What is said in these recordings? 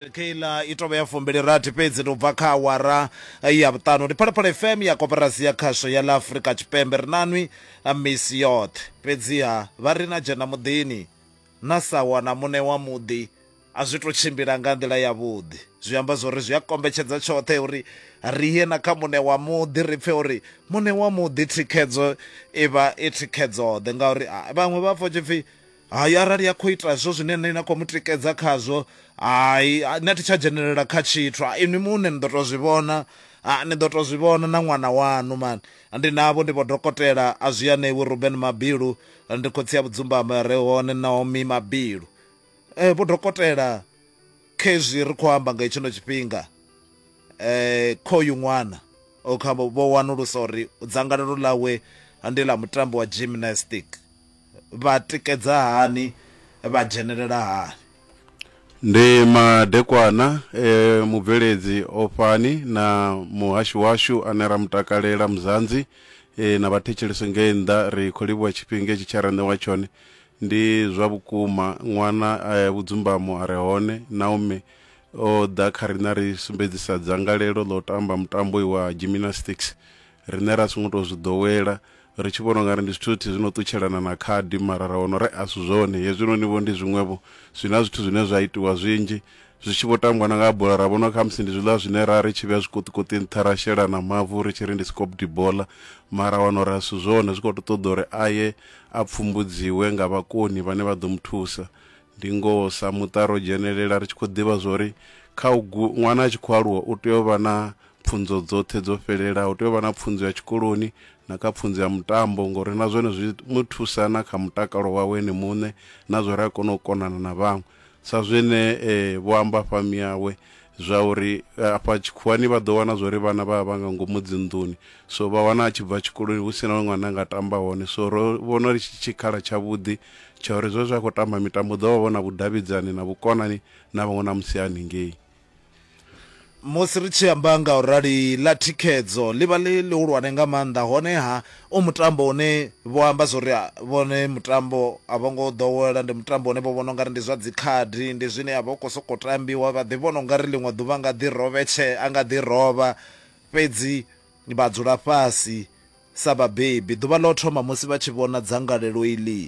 keiḽa i tovha ya fumbili rathi fhedzi tou bva kha awara ya vhuṱanu ndi phalaphala fm ya koperasi ya khasho ya ḽa afurika tshipembe ri na nwi misi yoṱhe fhedziha vha ri na dzhena muḓini na sa wana muṋe wa muḓi a zwi to tshimbila nga nḓila yavhuḓi zwi amba zwori zwi a kombetshedza tshoṱhe uri ri ye na kha muṋe wa muḓi ri pfhe uri muṋe wa muḓi thikhedzo i vha i thikhedzo ḓe ngauri vhaṅwe vha pfha tshipfi Hai, arali a khou ita hezwo zwine inwi na khou mu tikedza khazwo, hai, nṋe a thi tsha dzhenelela kha tshithu. Ha, inwi muṋe ni ḓo tou zwi vhona. Ha, ni ḓo tou zwi vhona na ṅwana waṋu. Mani, ndi navho, ndi vhodokotela a zwianevhu, Ruben Mabilu, ndi khotsi ya vhudzumbamo ya re hone, Naomi Mabilu. Ee, vhodokotela, khezwi ri khou amba nga hetshino tshifhinga, kha uyu ṅwana, vho wanulusa uri dzangalelo ḽawe ndi ḽa mutambo wa gymnastic. vha tikedza hani, vha dzhenelela hani? Ndi madekwana e mubveledzi Ofhani na muhashi washu ane ra mu takalela Muzanzi na vhathetshelesi ngei nnḓa ri khou livhuwa tshifhinga hetshi tshe ra ṋewa tshone. Ndi zwa vhukuma, ṅwana a ya vhudzumbamo a re hone. Naomi o ḓa kha riṋe a ri sumbedzisa dzangalelo ḽa u tamba mutambo uyu wa gymnastics. Riṋe ra songo tou zwi ḓowela, ri tshi vhona u nga ri ndi zwithu zwithihi zwi no ṱutshelana na khadi, mara ra wana uri a si zwone. Hezwinoni-vho ndi zwiṅwe-vho, zwi na zwithu zwine zwa itiwa zwinzhi. Zwi tshi vho tambiwa na nga ha bola, ra vhona uri khamusi ndi zwiḽa zwine ra ri tshi vhea zwiṱukuṱi nṱha ra shela na mavu ri tshi ri ndi scooped bola, mara ra wana uri a si zwone, zwi khou tou ṱoḓa uri a ye a pfumbudziwe nga vhakoni vhane vha ḓo mu thusa. Ndi ngoho, sa muṱa ro dzhenelela ri tshi khou ḓivha zwa uri kha u gu, ṅwana a tshi khou aluwa u tea u vha na pfunzo dzoṱhe dzo fhelelaho u tea u vha na pfunzo ya tshikoloni na kha pfunzo ya mutambo ngori na zwone zwi mu thusa na kha mutakalo wawe ene muṋe na zwo ri a kona u konana na vhaṅwe sa zwine eh, vho amba fami yawe zwa uri eh, afha tshikhuwani vha ḓo wana zwa uri vhana vha vha nga ngomu dzinḓuni so vha wana a tshi bva tshikoloni hu si na ṅwana nga tamba hone so ro vhona ri tshikhala tshavhuḓi tsha uri zwe zwa khou tamba mitambo ḓo vha vho na vhudavhidzani na vhukonani na vhaṅwe na musi haningei musi ri tshi amba nga u rali ḽa thikhedzo ḽi vha ḽi ḽihulwane nga maanḓa honeha u mutambo une vho amba zwo ri vhone mutambo a vho ngo ḓowela ndi mutambo une vho vhona ungari ndi zwa dzikhadi ndi zwine a vha u khou sokou tambiwa vha ḓi vhona ungari ḽiṅwe ḓuvha nga ḓi rovhetshe a nga ḓi rovha fhedzi vha dzula fhasi sa vhabebi ḓuvha ḽo thoma musi vha tshi vhona dzangalelo iḽi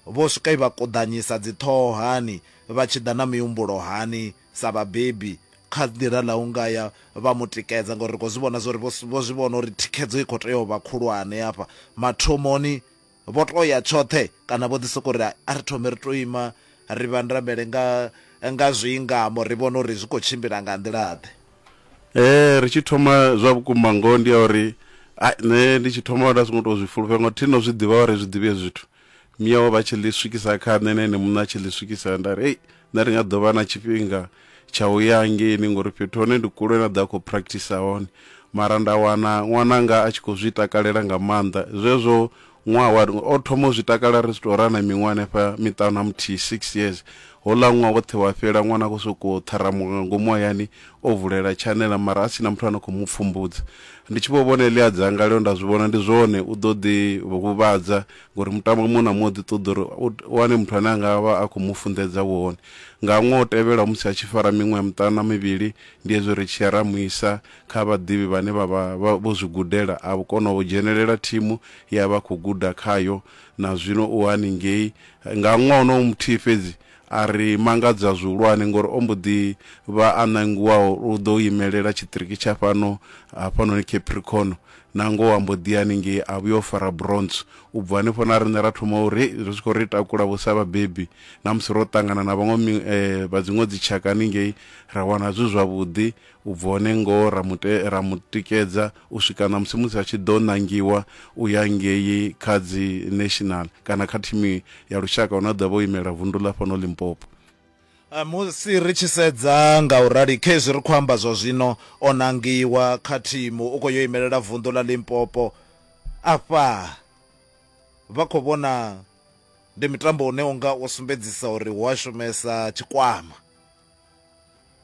Vho swika i vha kuḓanyisa dziṱhoho hani, vha tshi ḓa na mihumbulo hani sa vhabebi kha ḓira ḽa u nga ya vha mu tikedza ngauri ri khou zwi vhona zwa uri vho vho zwi vhona uri thikhedzo i khou tea u vha khulwane hafha. Mathomoni vho tou ya tshoṱhe kana vho ḓi sokou ri a ri thome ri tou ima ri vhandamele nga nga zwiingamo ri vhone uri zwi khou tshimbila nga nḓila-ḓe. Ee, ri tshi thoma zwa vhukuma ngoho ndi ya uri nṋe ndi tshi thoma nda songo tou zwi fulufhela ngauri thi no zwi ḓivha vha ri zwi ḓivhi hezwi zwithu. Miao vha tshi ḽi swikisa kha nṋe na ene muṋe a tshi ḽi swikisa nda ri ei nṋe ri nga ḓo vha na tshifhinga tsha u ya ngeini ngori fhethu hone ndi kule na ḓa khou practice hone mara nda wana ṅwananga a tshi khou zwi takalela nga maanḓa zwezwo ṅwaha wa o thoma u zwi takala ri si tou rana miṅwaha hanefha miṱanu na muthihi six years hola ṅwaha woṱhe wa fhela ṅwana a khou sokou ṱharamuka nga ngomu hayani o vulela tshanela mara a sina muthu ano khou mu pfumbudza ndi tshi vho vhona eḽia dzanga leo nda zwi vhona ndi zwone u ḓo ḓi huvhadza ngori mutambo muṅwe na muṅwe ḓi ṱoḓa uri u wane muthu ane anga vha a khou mu funḓedza wone nga ṅwe o tevhela musi a tshi fara miṅwe ya muṱanu na mivhili ndi hezwo ri tshiya ra muisa kha vhaḓivhi vhane vha vha vho zwi gudela a vho kona u dzhenelela thimu ya vha khou guda khayo na zwino u haningei nga ṅwe onowo muthihi fhedzi a ri mangadza zwihulwane ngori o mbo ḓi vha a ṋangiwaho u ḓo imelela tshiṱiriki tsha fhano hafhanoni Capricorn, nangoho a mbo ḓi ya haningei a vhuya o fara bronze. U bva hanefho na riṋe ra thoma uri hei zwi khou ri takula vho sa vhabebi na musi ro ṱangana na vhaṅwe vha dziṅwe dzitshaka haningei ra wana zwi zwavhuḓi, u bva hone ngoho ra mu ra mu tikedza u swika na musi musi a tshi ḓo ṋangiwa u ya ngei kha dzi national kana kha thimu ya lushaka hune a ḓo vha o imela vundu ḽa fhano limpopo Eh, musi ri tshi sedza nga u rali khezwi ri khou amba zwa zwino o nangiwa kha thimu u khou yo imelela vunḓu ḽa limpopo afha vha khou vhona ndi mitambo une unga u sumbedzisa uri hu a shumesa tshikwama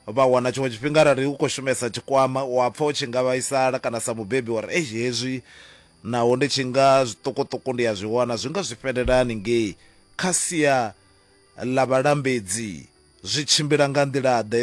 Vha wana tshiṅwe tshifhinga arali u khou shumesa tshikwama wa pfa u tshi nga vhaisala kana sa mubebi wa ri eish hezwi naho ndi tshi nga zwiṱukuṱuku ndi a zwi wana zwi nga zwi fhelela haningei. Kha sia ḽa vhalambedzi zwi tshimbila nga nḓila-ḓe?